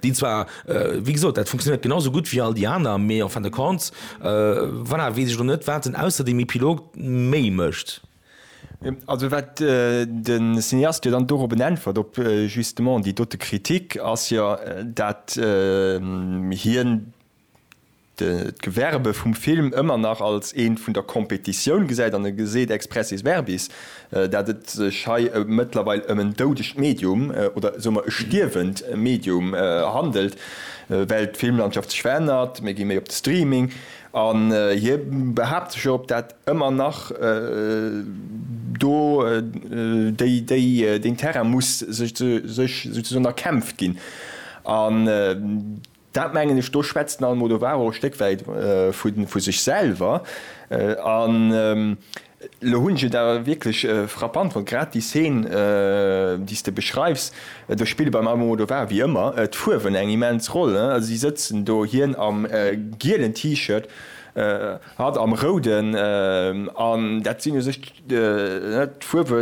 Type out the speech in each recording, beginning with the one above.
déi zwar, wéi gesot, dat funktionéiert genau esou gutt wéi all déi aner, mee en fin de compte, voilà, weess ech elo net, wat en ausser dem Epilog méi mécht. Also wat de Cineast jo dann dorobben äntwert, op justement déi dote Kritik, ass jo, dat hien, d'Gewerbe vum Film ëmmer nach als eent vun der Competitioun gesäit an e geseet expressis verbis, dat et sech hei mëttlerweil ëm en doudegt Medium oder esou mer e stierwend Medium handelt, well d'Filmlandschaft sech verännert, mir gi méi op de Streaming an hie behaapt sech op dat ëmmer nach do deen Terrain muss sech souzesoen erkämpft ginn. Dat mengen ech, do schwätzt den Almodovaro e Stéck wäit vu sech selwer. An elo hunn ech et awer wierklech frappant fonnt, grad déi Szen, déi s de beschreifs, do spille beim Almodovar wéi ëmmer d'Fuerwen eng immens Roll. Si sëtzen do, hien am gielen T-Shirt, Hatt am Rouden, an dat sinn u sech d'Fuerwe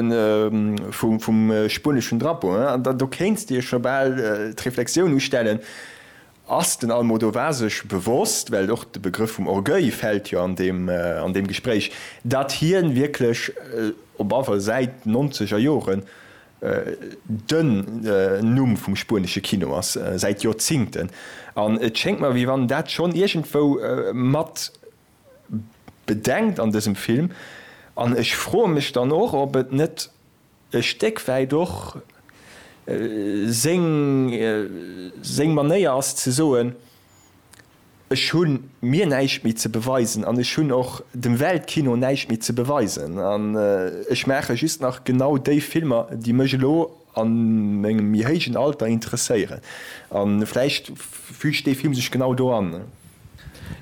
vum spueneschen Drapeau, an do kéints de jo scho bal d'Reflexioun ustellen, Ass den Almodóvar sech bewosst, well och de Begrëff vum Orgueil fält jo an deem Gespréich, datt hien wierklech op alle Fall säit den nonzeger Joren Den Numm vum spuenesche Kino ass säit Joerzingten, an et schéngt mer wéi wann dat schonn iergendwou mat bedengt an dësem Film, an ech froe mech dann och ob et net e Stéck wäit och seng Manéier ass ze soen, Ech hu mir näischt méi ze beweisen an ech hunn och dem Weltkino näischt méi ze beweisen an ech maache just nach genau déi Filmer, déi mech elo a mengem méi héijen Alter interesséieren. A vläicht füügt dee Film sech genau do an.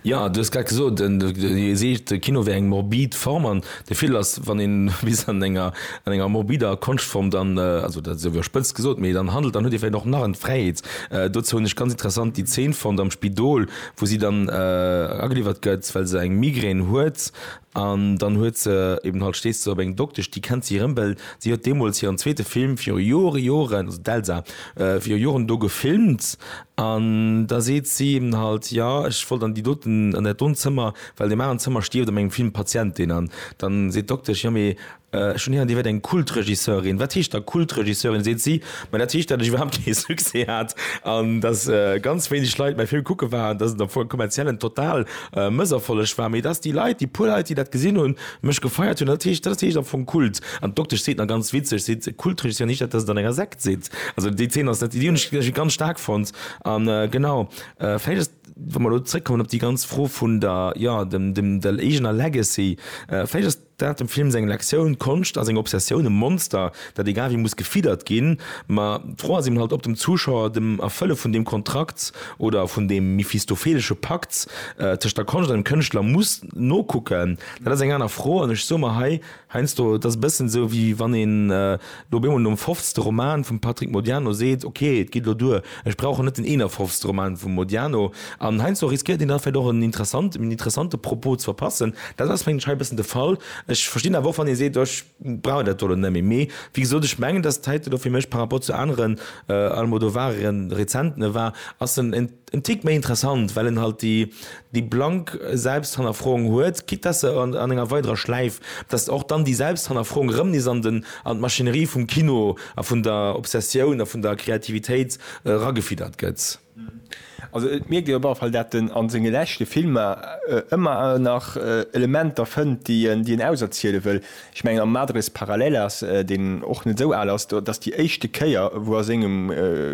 Jo, du hues grad gesot, Dir seet, de Kino wär eng morbid Form. De Fil ass, wann een bis an enger, an enger morbider Konschtform dann, also dat ass ewéi spëtz gesot, mee dann handelt, dann huet ee vläicht och nach en d'Fräiheet. Dozou hunn ech ganz interessant déi Zeen fonnt am Spidol, wou si dann ageliwwert gëtt, well se eng Migrän huet an dann huet se eben halt, steesst se op eng Doktesch, déi kennt si erëm, well si huet deemools hiren zweete Film viru Jore, Joren, also d'Elsa, viru Joren do gefilmt An da seet si him halt, Jo, ech wollt an déi doten, an dat dont Zëmmer, well deen aneren Zëmmer stierft a mengem Film d'Patientin. An da seet d'Doktesch, Jo, mee ech hunn héieren, dir wäert eng Kultregisseurin. Wat heescht da Kultregisseurin? seet si, Ma dat heescht, datt ech iwwerhaapt kee Succès hat an datt ganz wéineg Leit mäi Film kucke waren, datt et am Fong e kommerziellen total Mësserfolleg war, mee datt déi Leit, déi puer Leit, déi dat gesinn hunn, Mech gefeiert hunn, dat heescht, dat ass déi éischt am Fong Kult. An d'Doktesch seet nach ganz witzeg, seet, Kultesch ass jo nich dat, dass et an enger Sekt sidd. Also déi Zeen ass net, déi hunn ech, ech ganz staark fonnt. A genau, vläicht ass, wa mer elo zréckkommen op déi ganz Fro vun der, jo, dem, dem, der eegener Legacy, vläicht ass dat dem Film seng Lektioun, Konscht ass eng Obsessioun, e Monster, dat egal wéi muss gefiddert ginn. Ma d'Fro ass eben halt, ob dem Zuschauer dem Erfëlle vun deem Kontrakt oder vun deem mephistophelesche Pakt tëscht der Konscht an dem Kënschtler muss, nokucken, dat ass eng aner Fro. An ech soe mer hei, heiansdo, et ass e bëssen esou, wéi wann een elo op eemol nom fofzte Roman vum Patrick Modiano seet, ok, et geet elo duer, ech brauch elo net den eenefofzte Roman vum Modiano. An heiansdo riskéiert een da vläicht och en interessant, en interessante Propos ze verpassen. Dat ass, mengen ech, hei e bëssen de Fall. Ech verstinn awer och, wann ee seet, ech brauch dat do elo net méi. Mee wéi gesot, ech mengen, datt et heite do fir mech par rapport zu aneren Almodovar-Rezentene war, ass en, En Tick méi interessant, well en halt déi déi blank Selbsthannerfroung huet, quitte dass se an enger weiderer Schläif, dass och dann déi Selbsthannerfroung erëm nees an den an d'Maschinerie vum Kino a vun der Obsessioun a vun der Kreativitéit eragefiddert gëtt. Also et mierkt een op alle Fall, dat en a senge leschte Filmer ëmmer nach Elementer fënnt, déi en auserziele wëll. Ech mengen am Madres Paralelas, deen och net esou al ass, dat ass déi éischte Kéier, wou a sengem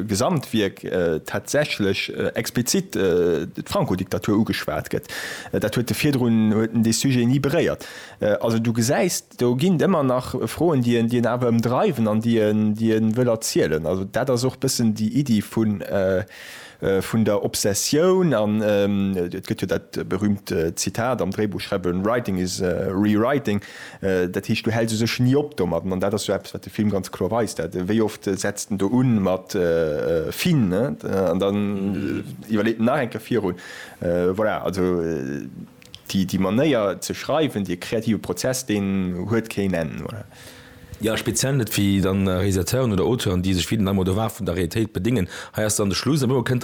Gesamtwierk tatsächlech explizit d'Franco-Diktatur ugeschwat gëtt. Dat huet e virdrun, huet en dee Sujet ni beréiert. Also du gesäis, do ginn et ëmmer nach Froen, déi en awer ëmdreiwen an déi en wëll erzielen. Also dat ass och e bëssen déi Iddi vu. Vun der Obsessioun an, et gëtt jo dat berühmt Zitat am Dréibuchschreiwen, Writing is rewriting, dat heescht, du häls u sech ni op domadden. An dat ass jo eppes, wat de Film ganz kloer weist, dat wéi oft setzt en do un mat fin, an dann iwwerleet en nach eng Kéier virun. Voilà, also. Déi Manéier ze schreiwen, dee kreative Prozess, deen huet keen Enn, oder? Jo, speziell net fir dann Realisateuren oder Auteuren, déi sech wéi den Almodovar vun der Realitéit bedéngen. Hei ass dann de Schluss, a duerno kënnt dann.